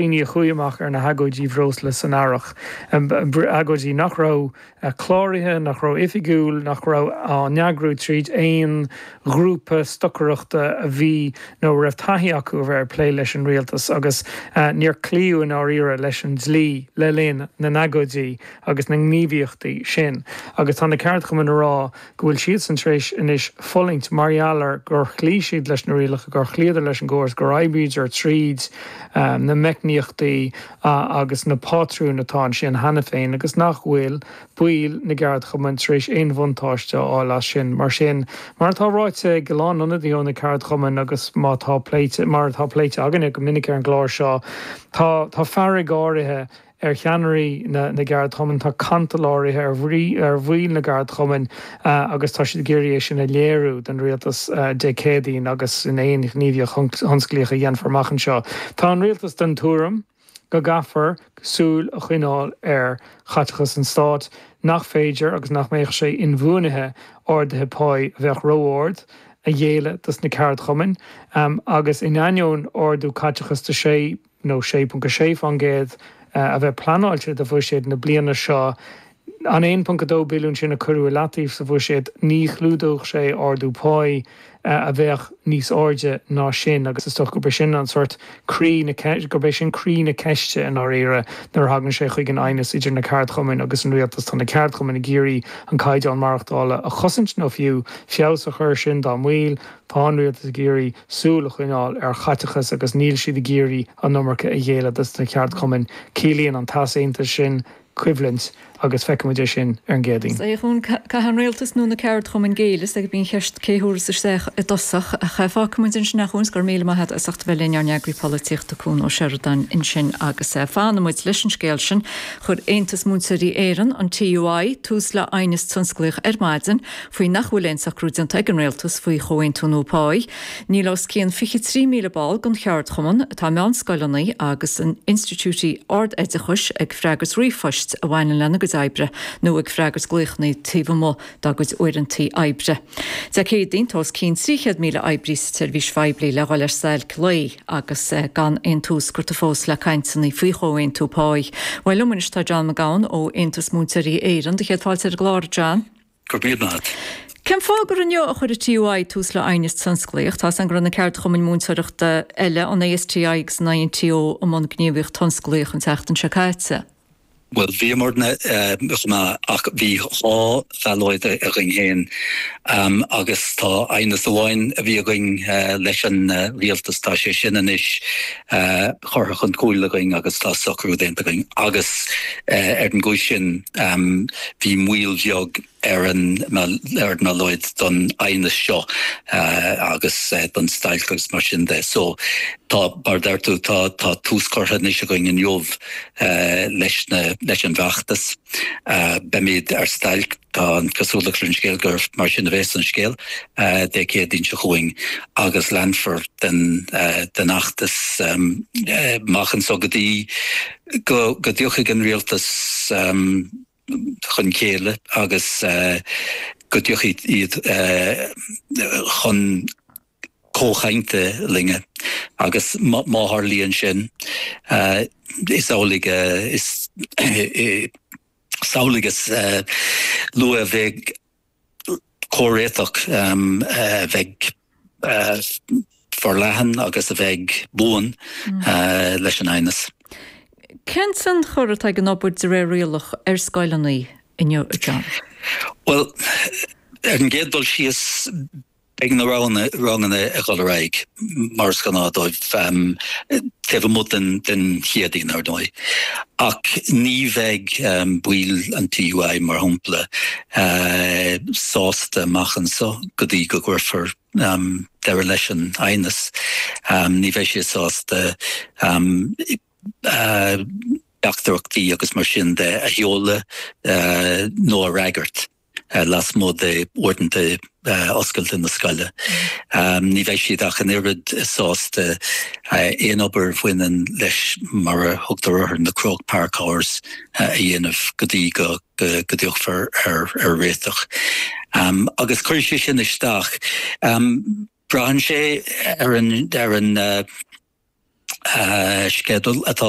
daoine a chuaigh amach ar na hagóidí bhreosla san earrach, agóidí nach raibh cláraithe, nach raibh oifigiúil, nach raibh á n-eagrú tríd aon ghrúpa stocaireachta a bhí nó a raibh taithí acu a bheith ag plé leis an rialtas agus níor cloíodh i ndáiríre leis an dlí le linn na n-agóidí agus na ngníomhaíochtaí sin agus tá na ceardchumainn a rá go bhfuil siadsan tar éis anois fulaingt mar gheall ar gur chloígh siad leis na rialacha, gur chloíodar leis an gcóras, gur oibríodar tríd na meicníochtaí agus na pátrúin atá ansin cheana féin agus nach bhfuil baill na gceardchumann tar éis aon bhuntáiste a fháil as sin. Mar sin, mar atá ráite ag a lán ionadaithe ó na ceardchumainn agus mar atá pléite, mar atá pléite againne go minic ar an gclár seo, tá, tá fearg áirithe ar cheannairí na gceardchumann, tá cantal áirithe ar bhaill na gceardchumann agus tá siad ag iarraidh é sin a léiriú don rialtas Dé Céadaoin agus in aon ghníomhaíocht thionsclaíoch a dhéanfar amach anseo. Tá an rialtas den tuairim go gcaithfear súil a choinneáil ar chaiteachas an stáit, nach féidir agus nach mbeadh sé inbhuanaithe arduithe páí a bheadh ró-ard a ghéilleadh dos na ceardchumainn agus in ainneoin ardú caiteachais de 6 nó 6.6% a bheith pleanáilte do bhuiséad na bliana seo, an 1.2 billiún sin a cuireadh i leataobh sa bhuiséad, ní chlúdódh sé ardú páí a bheadh níos airde ná sin agus is dócha gurb é sin an sórt gurb é sin croí na ceiste, i ndáiríre, nuair a thagann sé chuig an aighneas idir na ceardchumainn agus an rialtas. Tá na ceardchumainn ag iarraidh an caighdeán maireachtála a chosaint nó fiú feabhas a chur sin dá mbaill. Tá an rialtas ag iarraidh súil a choinneáil ar chaiteachas agus níl siad ag iarraidh an iomarca a ghéilleadh dos na ceardchumainn. Ciallaíonn an t-easaontas sin coimhlint agus feicfidh muid é sin ar an gCéadaoin. Caithfidh an rialtas nó na ceardchumainn géilleadh, is agus bíonn an cheist 'cé a thabharfas isteach i dtosach'. Fágfaidh muid ansin, a Chuain, is go raibh míle maith agat as ucht a bheith linn, ár n-eagraí polaitíochta, Cuan Ó Seireadáin ansin agus fanfaidh muid leis an scéal sin. Chuir Aontas Múinteoirí Éireann, an TUI, tús le aighneas tionsclaíoch ar maidin. Faoi nach bhfuil aon socrú déanta ag an Rialtas faoi chomhaontú nua páí, níl os cionn 23,000 ball den cheardchumann, atá i meánscoileanna agus in institiúidí ard-oideachais ag freagairt ríomhphoist a bhaineann lena gcuid oibre nó ag freagairt glaochanna taobh amuigh dá gcuid uaireantaí oibre. Dé Céadaoin, tá os cionn 300,000 oibrí sa tseirbhís phoiblí le dhul ar stailc lae agus gan aon tús curtha fós le cainteanna faoi chomhaontú páí. Bhuel, liom anois tá John Mac Gabhann ó Aontas Múinteoirí Éireann. Do chéad fáilte ar an gclár, John. Go bríomhar leat. Cén fáth gur inniu a chuir an TUI tús le aighneas tionsclaíoch? Tá san go raibh na ceardchumainn múinteoireachta eile, an ASTI agus an INTO, i mbun gníomhaíocht thionsclaíoch an tseachtain seo caite. Bhuel, bhíomarna chomh maith ach bhí dhá bhallóid againn féin agus tá aighneas amháin a bhí againn leis an rialtas, tá sé sin anois curtha chun cúil againn agus tá socrú déanta againn agus ar an gcúis sin, Am, Bhí moill bheag ar ár mballóid don aighneas seo agus don stailc agus mar sin de so tá, mar a deir tú, tá tús curtha anois againn inniu leis an bhfeachtas. Beimid ar stailc, tá an chosúlacht ar an scéal gur mar sin a bheidh an scéal, Dé Céadaoin seo chugainn agus leanfar den fheachtas amach anseo go dtí, go dtiocfaidh an rialtas chun céille agus go dtiocfaidh siad chun comhchainte linne agus má tharlaíonn sin is amhlaidh is amhlaidh is luaithe a bheidh comhréiteach a bheidh forleathan agus a bheidh buan leis an aighneas. Cén tionchar atá ag an obair de réir rialach ar scoileanna inniu, a John? Bhuel, ar an gcéad dul síos, Beidh na ranganna ag dul ar aghaidh mar is gnáth dóibh taobh amuigh den Chéadaoin, ar ndóigh, ach ní bheidh baill an TUI, mar shampla, sásta amach anseo go dtí go gcuirfear deireadh leis an aighneas. Ní bheidh siad sásta teachtaireachtaí agus mar sin de a sheoladh nó a fhreagairt. lasmuigh de uaireanta oscailte na scoile. Ní bheidh siad ach an oiread sásta aon obair a bhaineann leis mar a thugtar orthu, na Croke Park Hours, a dhéanamh go dtí go dtiocfar ar réiteach. Agus cuirfidh sé sin isteach. Braitheann sé ar an sceideal atá.